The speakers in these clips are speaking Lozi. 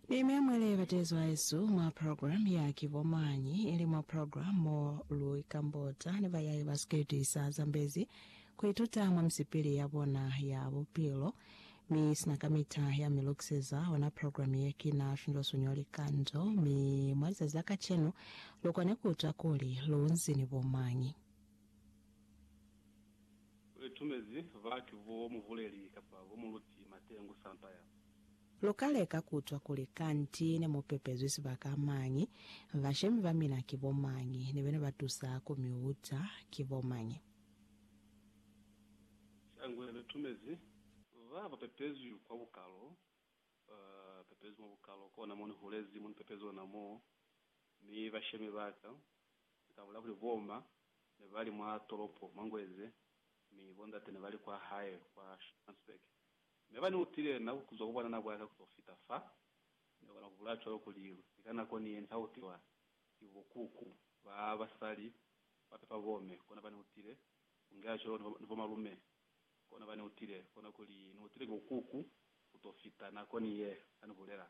Ni mia mwa le batezo a esu mwa program ya ki bo mañi, ili mwa program mo lu ikambota ni bayai ba siketi sa zambezi ku ituta mwa misipili ya bona ya bupilo. Mi sina kamita ya mi lukiseza ona program ye ki na findwa sonyo likanzo, mi mwa lizazi la kacenu lu kone ku utwa kuli lu nzi ni bo mañi. U itumezi batu bo mubuleli kapa bo muluti mateñu sampa ya. Lu ka leka ku utwa kuli kanti ne mu pepezwi sibaka mañi, bashemi ba mina ki bo mañi, ni bena ba tusa ku mi uta ki bo mañi. Shangwe lu tumezi ba ba pepezwi kwa bukalo, ba pepezwi mwa bukalo, kona mo ni hulezi mo ni pepezi ona moo, mi bashemi ba ka, ni ka bulela kuli bo ma ne ba li mwa tolopo mwa Ngweze, mi bo ndate ne ba li kwa hae kwa Schransberg. Mi aba ni utile na kuzwa ku bwanana bwa ka kuto fita fa, ni kona ku bulaya cwalo kuli ni ka nako ni ye ni ka utiwa ki bo kuku ba basali ba pepa bome, kona ba ni utile Unga cwalo ni bomalume, kona bani utile, kona kuli ni utile ki ukuku kuto fita nako ni ye ani bulela.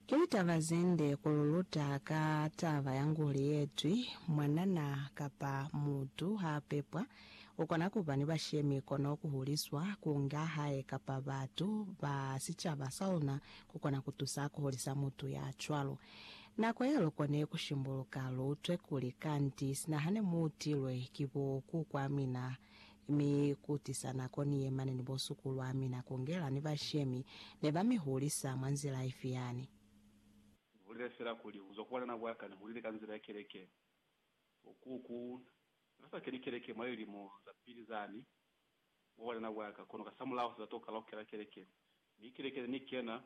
Ki taba zende ku luluta ka taba ya nguli yetwi, mwanana kapa mutu ha pepwa, ukona kuba ni bashemi kono kuhuliswa, kunga hae kapa batu ba sicaba saluna kukona kutusa kuhulisa mutu ya cwalo. Nako ya lu kone ku shimbuluka, lu utwe kuli, Kanti, sina hane mu utilwe ki bo ku kwa mina, mi ku tisa nako ni ye mane ni bo suku lwa mina ku ngela ni bashemi, ne ba mi hulisa mwa nzila ifi yani? Ni bulele fela kuli, kuzwa ku bwanana bwa ka, ni hulile ka nzila ya keleke. Bo ku, ku, na ka sa keni keleke mwa lilimo za pili zani, mwa bwanana bwa ka, kono kasamulaho se ka to ka la ku kena keleke. Mi keleke ne ni kena,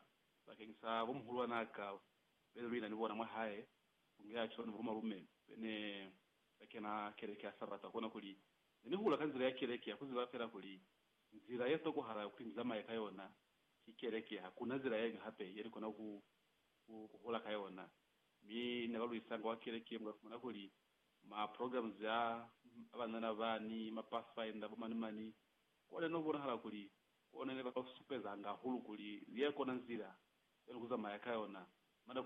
bakeñisa bo muhulwan'a ka, Bene luina ni bona mwa hae ku nge Archibald ni bomalume bene ba kena keleke ya Sabata kona kuli ne ni hula ka nzila ya keleke ya ku ziba fela kuli nzila ye tokohala kuli ni zamaye ka yona ki keleke, hakuna nzila yeñwi hape ye ni kona ku ku hula ka yona. Mi ne ba luisanga wa keleke mu ka fumana kuli ma programs a a banana ba ni ma pathfinder bo mani mani, kwa ne no bonahala kuli Kona ne ba ka ku supezanga hahulu kuli li ya kona nzila ya luku zamaya ka yona. Mada ku.